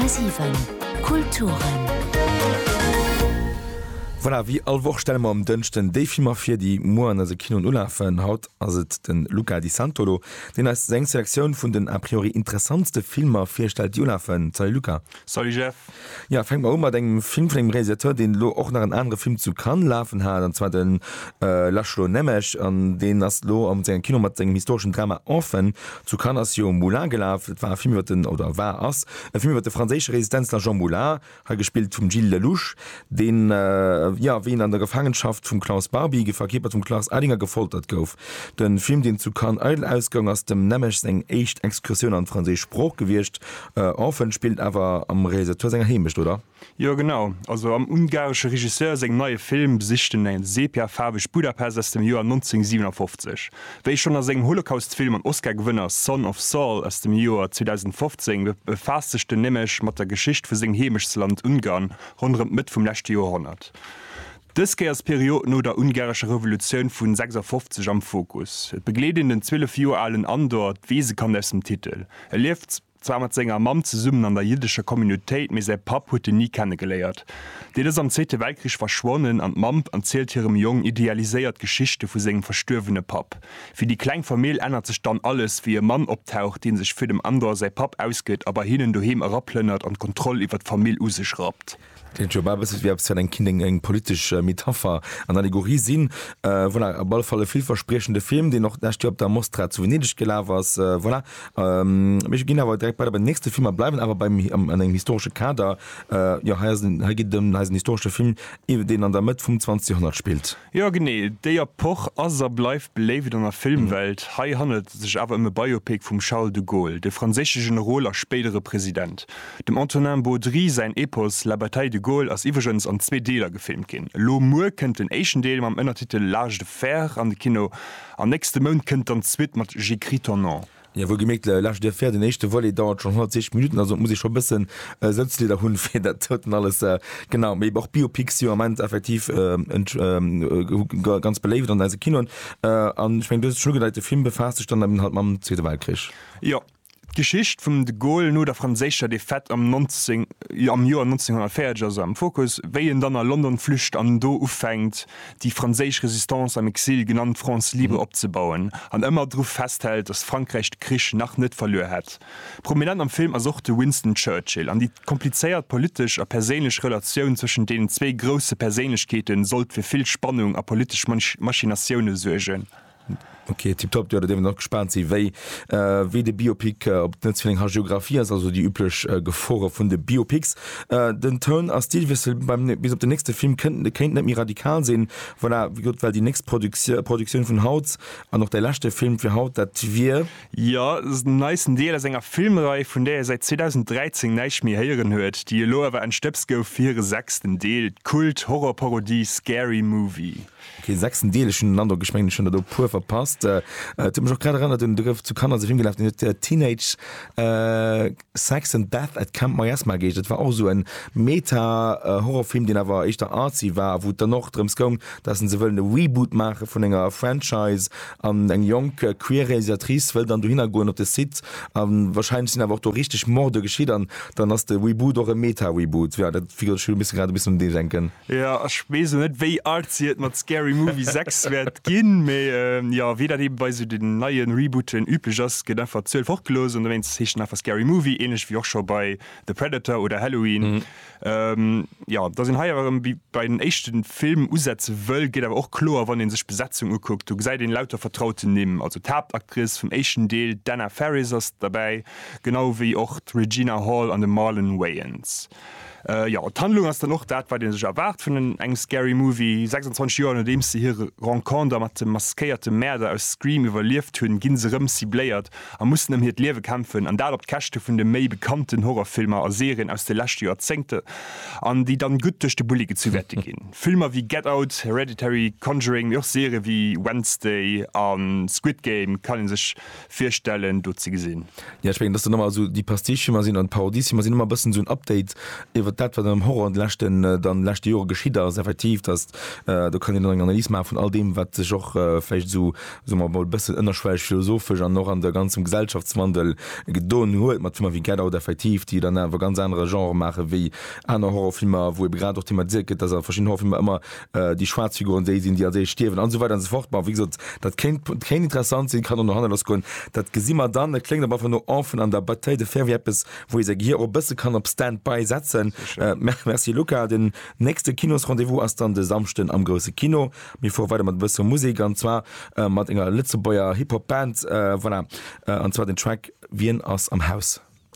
10,7 Kulturen. Voilà, wéi all Woch stelle mer um Dënschden déi Filmer vir, déi muer an eise Kinoen ulafen. Haut ass et de Luca Di Santolo, deen eis seng Selektioun vun den a priori interessantste Filmer virstellt, déi ulafen. Salut Luca! Salut Jeff. Jo, fänke mer u mat engem Film vun engem Realisateur, deen elo och nach en anere Film zu Cannes lafen hat, an zwar de László Nemes. An deen ass elo am sengem Kino mat sengem historeschen Drama Orphan. Zu Cannes ass jo Moulin gelaf. Et war e Film iwwer den, oder war, ass e Film iwwer de franséische Resistenzler Jean Moulin, hei gespillt vum Gilles Lellouche, deen, jo, wéi en an der Gefaangenschaft vum Klaus Barbie, verkierpert vum Klaus Ellinger, gefoltert gouf. De Film, deen zu Cannes eidel ausgoung, ass dem Nemes seng éischt Excursioun an d'franséisch Sprooch gewiescht. Orphan spillt awer am Realisateur senger Heemecht, oder? Jo genau, also am ungaresche Regisseur sengem neie Film besicht en e sepia-faarwegt Budapest aus dem Joer 1957. Wéi schonn a sengem Holocaust-Film an Oscar-Gewënner Son of Saul aus dem Joer 2015 befaasst sech den Nemec mat der Geschicht vu sengem Heemechtsland Ungarn ronderëm d'Mëtt vum leschte Joerhonnert. Dës Kéiers d'Period no der ungarescher Revolutioun vu 56 am Fokus. Et begleet een den 12 Joer alen Andor, d'Weesekand aus dem Titel. E lieft zwar mat senger Mamm zesummen an der jiddescher Communautéit, mee säi Papp huet en ni kennegeléiert. Deen ass am Zweete Weltkrich verschwonnen an d'Mamm erzielt hirem Jong idealiséiert Geschichte vu sengem verstuerwene Papp. Fir déi kleng Famill ännert sech dann alles, wéi e Mann optaucht, dee sech fir dem Andor säi Papp ausgëtt a bei hinnen doheem eraplënnert an d'Kontroll iwwer d'Famill u sech rappt. Kléngt jo bal e bësse wéi eppes wat eng kinnt eng politesch Metapher an Allegorie sinn. Voilà, op alle Fall e villverspriechende Film, deen och d'lescht Joer op der Mostra zu Venedeg gelaf ass. Voilà, mir ginn awer direkt weider bei den nächste Film a bleiwen awer beim an engem historesche Kader. Jo, hei ass en, hei geet et ëm, hei ass en historesche Film, deen an der Mëtt vum 20. Joerhonnert spillt. Jo genee, déi Epoch ass a bleift beléift an der Filmwelt. Hei handelt et sech awer ëm e Biopic vum Charles de Gaulle, de franséische Generol a spéidere President. Dem Antonin Baudry säin Epos La bataille de Gaulle ass iwwregens an zwee Deeler gefilmt ginn. Elo muer kënnt den éischten Deel mam Ënnertitel L'âge de fer an de Kino an nächste Mount kënnt dann d'Suite mat J'écris ton nom. Jo, wuelgemierkt, laanscht der Fähr, den éischte Volet dauert schonn 160 Minutten, also et muss ee scho e bëssen Sëtzlieder hunn, fir dat doten alles, genau. Mee och Biopics si jo am Ament effektiv ganz beléift an eise Kinoen. An ech mengen, du hues et schonn ugedeit, de Film befaasst sech dann eben halt mam Zweete Weltkrich. Jo, d'Geschicht vum de Gaulle no der franséischer Defaite am Joer 1940 ass am Fokus, wéi en dann a London flücht an do ufänkt, déi franséisch Résistance am Exil, genannt France libre, opzebauen an ëmmer dru festhält, datt Frankräich de Krich nach net verluer hätt. Prominent am Film ass och de Winston Churchill an déi komplizéiert politesch a perséinlech Relatioun zwëschen deenen zwee grousse Perséinlechkeete sollt fir vill Spannung a politesch Machinatioune suergen. Ok, tiptop. Jo, da dierf een och gespaant sinn, wéi wéi de Biopic op den Netz vun enger Hagiographie ass, also déi üblech Gefore vun de Biopics. Den Toun a Stilwiessel beim bis op den nächste Film kënnt kéint net méi radikal sinn. Voilà, wéi gesot, well déi nächst Produktio Produktioun vun haut an och däi leschte Film fir haut, dat wier. Jo, den neisten Deel aus enger Filmrei, vun där ee säit 2013 näischt méi héieren huet, déi elo awer entstëbst gouf fir hire sechsten Deel, d'Kult-Horror-Parodie Scary Movie. Keen sechsten Deel, ech hunn den Androck, ech mengen ech hunn der do e puer verpasst. Et huet mech och grad erënnert un, do gouf zu Kanner sech ëmgelaf, deen huet Teenage Sex and Death at Camp Miasma geheescht. Dat war och esou e Meta-Horrorfilm, deen awer éischter artsy war a wou et dann och drëms goung, datt en se wëllen e Reboot maache vun enger Franchise an eng jonk queer Realisatrice wëll dann dohinner goen op de Site a wahrscheinlech sinn awer och do richteg Morde geschitt an dann ass de Reboot och e Meta-Reboot. Jo, dat figure, ech misse grad e bëssen un dee denken. Jo ech wees lo net wéi artsy et mat Scary Movie 6 wäert ginn, mee jo wéi dat eben bei sou den neien Rebooten üblech ass gëtt einfach d'Zuel fort gelooss an dowéinst heescht en einfach Scary Movie, ähnlech wéi och scho bei The Predator oder Halloween. Jo dass een hei awer erëm wéi bei den éischten Film usetze wëll geet awer och kloer wann een sech d'Besetzung ukuckt. Do gesäit een lauter vertrauten Nimm, also d'Haaptactrice vum éischten Deel d'Anna Faris ass derbäi, genau wéi och d'Regina Hall an de Marlon Wayans. Jo, d'Handlung ass dann och dat, wat ee sech erwaart vun engem Scary Movie. 26 Joer nodeems se hir Renconter mat dem maskéierte Mäerder aus Scream iwwerlieft hunn, gi se rëm cibléiert a mussen ëm hiert Liewe kämpfen. An dat op d'Käschte vun de méi bekannten Horrorfilmer a Serien aus de leschte Joerzéngte, an déi dann gutt duerch de Bulli gezu wäerte ginn. Filmer wéi Get Out, Hereditary, Conjuring, mee och Serië wéi Wednesday a Squid Game kann ee sech virstellen do ze gesinn. Jo, ech mengen, dass dann ëmmer esou déi Pastiche-Filmer sinn an d'Parodie-Filmer sinn ëmmer e bëssen esou en Update iwwert dat, wat am Horror an de leschten, dann leschte Jore geschitt ass. Effektiv, dass do kann een dann eng Analys maache vun all deem, wat sech och vläicht esou, soe mer emol, e bëssen ënnerschwelleg philosophesch an och an de ganzem Gesellschaftswandel gedon huet mat Filmer wéi Get Out, effektiv, déi dann awer ganz anere Genre maache wéi aner Horror-Filmer, wou ebe grad och thematiséiert gëtt, dass a verschiddenen Horror-Filmer ëmmer déi schwaarz Figuren déi sinn, déi als éischt stierwen an esou weider an esou fort. Bon, wéi gesot, dat kéint, kéint interessant sinn, kann och no hanne lass goen, dat gesi mer dann. Et kléngt awer einfach no Enfant an der Bataille de fer, wéi eppes, wou ee säi Gehir och e bësse kann op Stand-by setzen. Merci Luca. Den nächste Kinos-Rendez-vous ass dann de Samschden am Grousse Kino. Mir fuere weider mat e bësse Musek, an zwar mat enger Lëtzebuerger Hip-Hop-Band, voilà, an zwar den Track Wien ass am Haus?